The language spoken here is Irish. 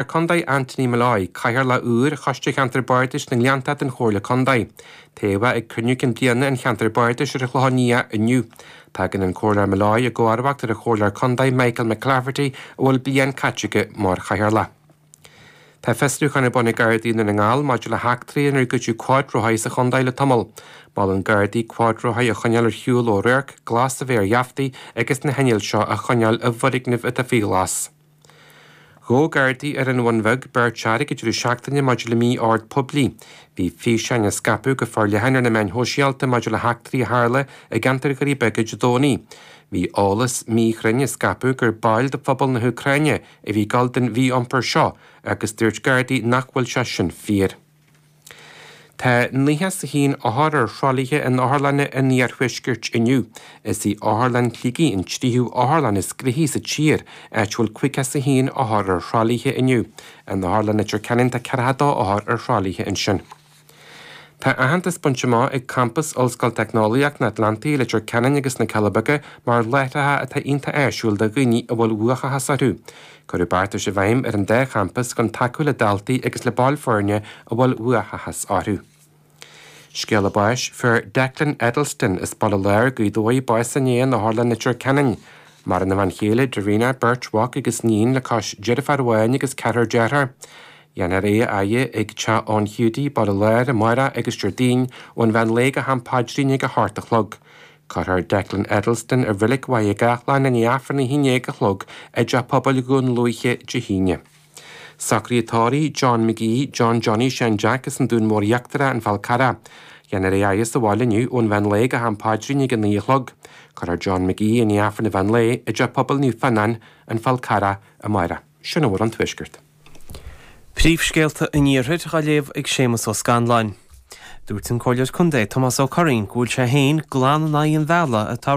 ar Contae Anthony Molloy, Cathaoirleach úr Choiste Cheantar Bardais na nGleannta den Chomhairle Contae, toghadh é ag cruinniú cinn bliana an Cheantair Bardais ar an Chlochán Liath inniu. Tagann an Comhairleoir Molloy i gcomharbacht ar an Chomhairleoir Contae Michael McClafferty a bhfuil bliain caite aige mar Chathaoirleach. Tá fiosrúchán ar bun ag Gardaí Dhún na nGall maidir le heachtraí inar goideadh cuadrothaí sa Chontae le tamall. Molann Gardaí cuadrothaí a choinneáil ar shiúl ó radharc, glas a bheith ar gheaftaí agus na hinnill seo a choinneáil i bhfoirgnimh atá faoi ghlas. Ghabh Gardaí ar an Bhun Bheag beirt fhear ag an deireadh seachtaine maidir le mí-ord poiblí. Bhí físeáin á scaipeadh go forleathan ar na meáin shóisialta maidir le heachtraí a tharla i gceantar Dhoirí Beaga Dé Domhnaigh. Bhí eolas míchruinn á scaipeadh gur baill de phobal na hÚcráine a bhí ag gabháil den mhí-iompar seo agus dúirt Gardaí nach bhfuil sé sin fíor. Tá naocha is a haon othar ar thralaithe in otharlanna an iarthuaiscirt inniu. Is í Otharlann Shligigh an tríú otharlann is gnóthaí sa tír, áit a bhfuil caoga is a haon othar ar thralaithe inniu. In Otharlann Leitir Ceanainn tá ceathracha dó othar ar thralaithe ansin. Tá aitheantas bainte amach ag campas Ollscoil Teicneolaíocht an Atlantaigh i Leitir Ceanainn agus na Cealla Beaga mar láithreacha atá iontach áisiúil do dhaoine a bhfuil uathachas orthu. Cuireadh beartais i bhfeidhm ar an dá champas chun tacú le daltaí agus le baill foirne a bhfuil uathachas orthu. Scéala báis fuair Declan Eddleston as Baile Láir Gaoth Dobhair, bás inné in Otharlann Leitir Ceanainn. Maireann a bhean chéile Darina, beirt mhac agus iníon le cois deirfiúr amháin agus ceathrar dearthár. Dhéanfar é a fhaire ag Teach Eoin Hiúdaí, Baile Láir, amárach agus Déardaoin ón Mheán Lae go ham paidrín ag a hocht a chlog. Cuirfear Declan Eddleston ar Reilig Mhachaire Gathlán i ndiaidh Aifreann a haon déag a chlog i dTeach Pobail Dhún Lúiche, Dé hAoine. Socruithe tórraimh John McGee, John Johnny Sheáin Jeaic as an Dún Mór Íochtarach, An Fál Carrach. Dhéanfar é a fhaire sa bhaile inniu ón mheán lae go ham paidrín ag a naoi a chlog. Cuirfear John McGee i ndiaidh Aifreann an mheán lae i dTeach Pobail Naomh Fionnáin, An Fál Carrach, amárach. Sin a bhfuil ón Tuaisceart. Príomhscéalta an Iarthair, dhá léamh ag Séamus Ó Scanláin. Dúirt an Comhairleoir Contae, Tomás Ó Curraoin, go bhfuil sé féin glan in aghaidh an bhealaigh atá